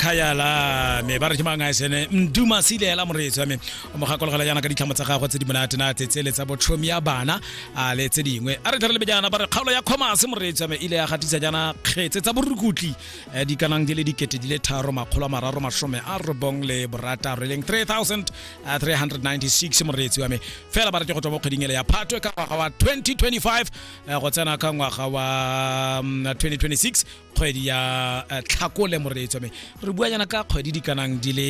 khayala me ba re ke mang a sene mduma sile la moreetsi wa me o mo gakologela yana ka ditlhamo tsa gagwe tse di monate na tse tsele tsa botlhomi ya bana a le tse dingwe a re tlhare lebe jana ba re kgaolo ya commerce moreetsi wa me ile ya gatisa jana kgetse tsa borukutli eh, di kanang di le dikete di le tharo makgolo a mararo masome a robong le borataro e leng 3396 moreetsi wa me fela ba re ke go tswa mo kgweding ele ya phatwe ka ngwaga wa 2025 eh, go tsena ka ngwaga wa mm, 2026 kgwedi ya eh, tlhakole moreetso me re bua jana ka kgwedi di kanang di le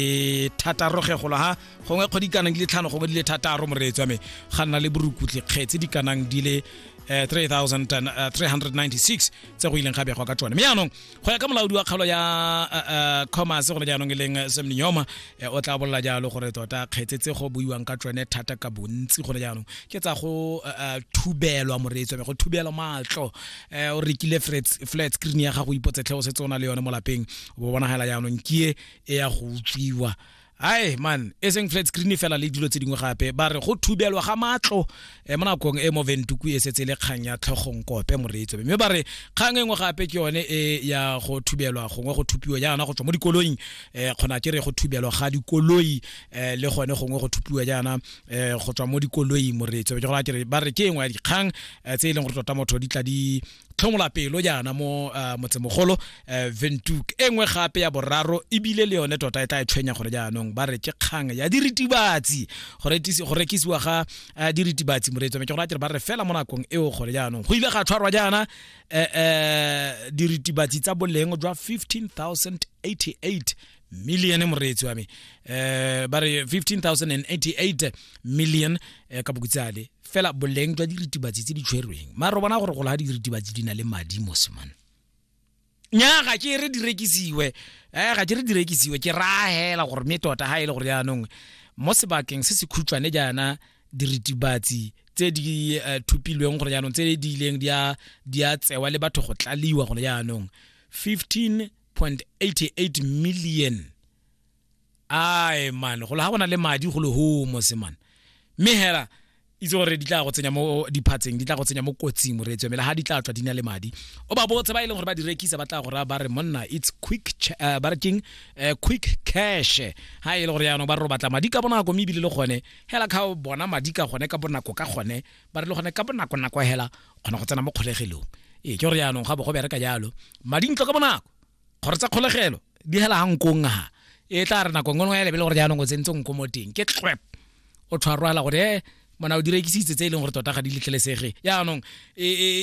thataro ge golo ha gongwe kgwedi kanang di le tlhano gongwe di le thataro moreetso me ga nna le borukutlhi kgetse di kanang di le 3396 eh, eh, tse go ileng ga begwa ka tsone mme jaanong go ya ka molaodi wa kgaolo ya commerce gone jaanong e leng semnioma Eh, o tla bolela jalo gore tota kgetse tse go buiwang ka tsone thata ka bontsi gone jaanong ke tsa go eh, eh, thubelwa moreetso go thubelwa maatlo um o rekile flat screen ya gago ipotsetlhe o setse o na le yone mo lapeng bo bonagela jaanong ke e ya go utswiwa ai man e seng flat screen fela le dilo tse dingwe gape ba re go thubelwa ga matlo e mo nakong e mo ventuku e setse le kgang ya tlhogong kope moreetso mme ba re kgang e nngwe gape ke yone e ya go thubelwa gongwe go thupiwa jaana go tswa mo dikoloing um kgona ke re go thubelwa ga dikoloi um le gone gongwe go thupiwa jaana um go tswa mo dikoloing moreetso ke gore ba re ke e nngwe ya dikgang tse e leng gore tota motho di tla di tlhomola pelo jaana mo uh, motsemogolo uh, ventuk e nngwe gape ya boraro ebile le yone tota e tla e tshwenya gore jaanong ba re ke kgang ya diritibatsi go rekisiwa ga uh, diritibatsi moreetso me ke gore a kere ba re fela mo nakong eo gore jaanong go ile ga tshwarwa jaana uh, uh, diritibatsi tsa boleng jwa 15088 million moreetsi wa me eh ba re 15088 million eh, ka bokutsale fela boleng jwa diritibatsi tse di tshwerweng ma re bona gore go la diritibatsi di na le madi mo semane nya ga ke re di rekisiwe eh ga ke re di rekisiwe ke rahela gore me tota ha ile e gore yaanong mo sebakeng se se khutshwane jaana diritibatsi tse di uh, thupilweng gore jaanong tse di ileng di a tsewa le batho go tlaliwa gore jaanong 15 1.88 million ai man go le ga bona le madi go le ho mo se man mme hela itse gore di tla go tsenya mo diphatseng di tla go tsenya mo kotsing moreetswe mele ga di tla tswa di na le madi o ba botse ba e leng gore ba di rekisa ba tla go raya ba re monna it's quick uh, ba re keng uh, quick cash ga e le gore yaanong ba re batla madi ka bonako mme ebile le gone hela ka bona madi ka gone ka bonako ka gone ba re le gone ka bonako nako hela kgona go tsena mo kgolegelong ee ke gore yaanong ga bo go bereka jalo madintlo ka bonako kgoro tsa kgolegelo di hela ga nkong ha e tla re nako e nngwe ya lebele gore jaanong o tsentse nko mo teng ke tlwep o tshwarwala gore e eh, mona o direkisitse tse e leng gore tota ga di letlelesege yaanong e, e, e,